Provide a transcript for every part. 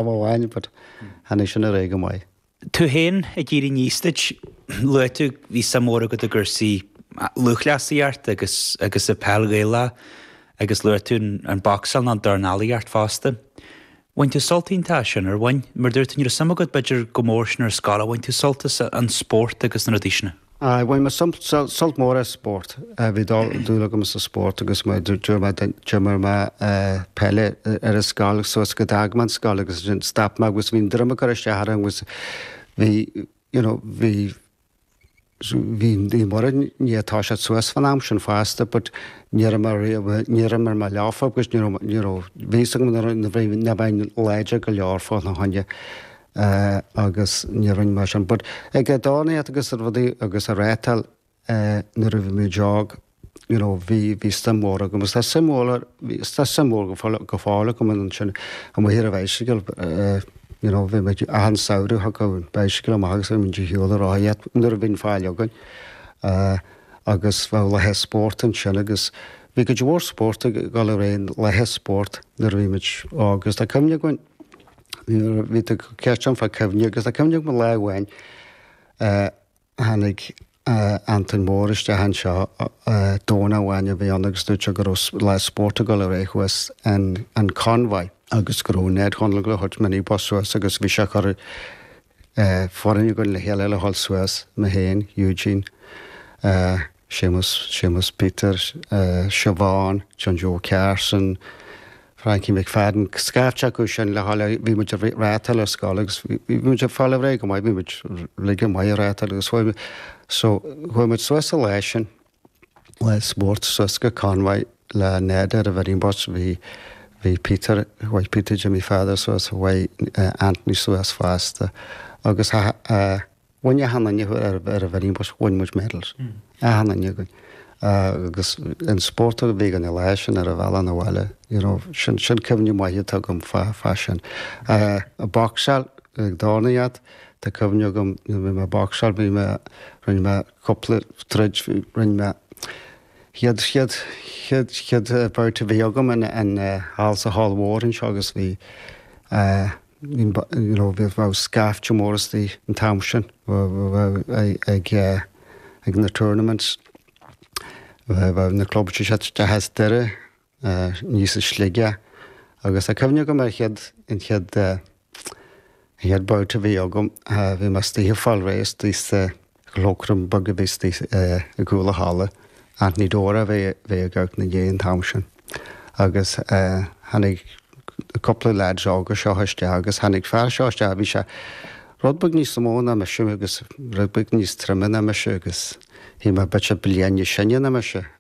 Lámh amháin, but tháinig sin ar aghaidh go maith. Tú féin ag éirí aníos duit, luaigh tú go bhí suim mhór agat i gcúrsaí lúthchleasaíocht agus agus i peil Ghaelach agus luaigh tú an boxáil nó an dornálaíocht fosta. Bhain tú sult iontach as sin, ar bhain? Mar dúirt tú nach raibh suim agat b'fhéidir chomh mór sin ar an scoil, ach bhain tú sult as an spórt agus na rudaí sin? Aye, bhain mé sult mór as spórt, bhí dúil agam sa spórt agus d'imir mé peil ar an scoil suas go d'fhág mé an scoil agus ansin stop mé agus bhí an droim ag cur isteach orm agus bhí, you know, bhí, bhí Naomh Muire i ndiaidh toiseacht suas fán am sin fosta but ní raibh mé riamh, ní raibh mé leofa agus ní raibh, you know, bhí fhios agam nuair a bhí, nach mbeinn láidir go leor fána choinne. eh, agus ní dhearn mé sin, but ag dornálaíocht agus rudaí agus ag reáchtáil eh, nuair a bhí muid óg, you know, bhí, bhí suim mhór agam agus tá suim mhór, bhí, tá suim mhór go fóill, go fóill agam in ansin amuigh ar an bhaisigil eh, you know, bhí muid achan samhradh thug an bhaisigil amach agus bhí muid ar shiúl ag rothaíocht nuair a bhíonn faill againn eh, agus bheadh laethe spóirt ansin agus bhí cuid mhór spóirt ag dul ar aghaidh, laethe spóirt nuair a bhí muid óg agus tá cuimhne againn Nuair a bhí tú ceist ann fá chuimhní, agus tá cuimhne agam lá amháin tháinig Antain Mór isteach anseo Domhnach amháin a bhí ann agus dúirt sé go raibh lá spóirt ag dul ar aghaidh thuas in Convoy agus go raibh Ned Chonaill ag dul a thabhairt mini bus suas agus bhí sé ag cur foireann againn le chéile le dhul suas, mé féin, Eugene, Séamus, Séamus Peter, Siobhán, John Joe Carson, Frankie McFadden, scaifte acu sin le dhul, bhí muid ag reáchtáil ar scoil agus bhí muid ag fáil réidh go maith, bhí muid uilig maith ag reáchtáil agus chuaigh muid suas an lá sin. spórt suas go Convoy le Ned ar an mhini bus. Bhí, bhí Peter, chuaigh Peter Jimmy Pheadair suas, chuaigh Anthony suas fosta agus tha, a, bhain achan duine ar, ar an mhini bus, bhain muid medals, achan duine againn. Agus an spórt a bhí againn an lá sin ar an bhealach 'na bhaile, you know, sin, sin cuimhní maithe atá agam fá, fá sin. Boxáil, ag dornálaíocht, tá cuimhne agam nuair a bhí mé ag boxáil, bhí mé, rinne mé. Cúpla troid rinne mé. Chéad, chéad, chéad, chéad bout a bhí agam in in Hall sa Hall Mhór anseo agus bhí you know bhí bheadh scaifte mór istigh an t-am sin ag ag na tournaments. Bheadh na clubs isteach as Doire. aníos i Sligeach agus tá cuimhne agam ar chéad, an chéad an chéad babhta a bhí agam, bhí mé istigh ag fáil réidh istigh sa chloakroom beag a bhí istigh i gcúl an halla, Anthony Doerr a bhí bhí ag amharc inár ndiaidh an t-am sin agus tháinig cúpla leaids óga seo isteach agus tháinig fear seo isteach, bhí sé rud beag níos mó ná mise agus rud beag níos troime ná mise agus bhí mé b'fhéidir bliain níos sine ná mise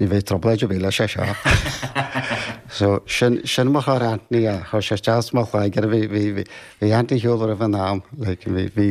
Ní bheidh trioblóid ar bith leis seo. So, sin, sin mo chara Anthony, a chuir sé isteach i mo chloigeann, bhí, bhí, bhí, bhí Anthony Hugh roimh an am, like, bhí, bhí,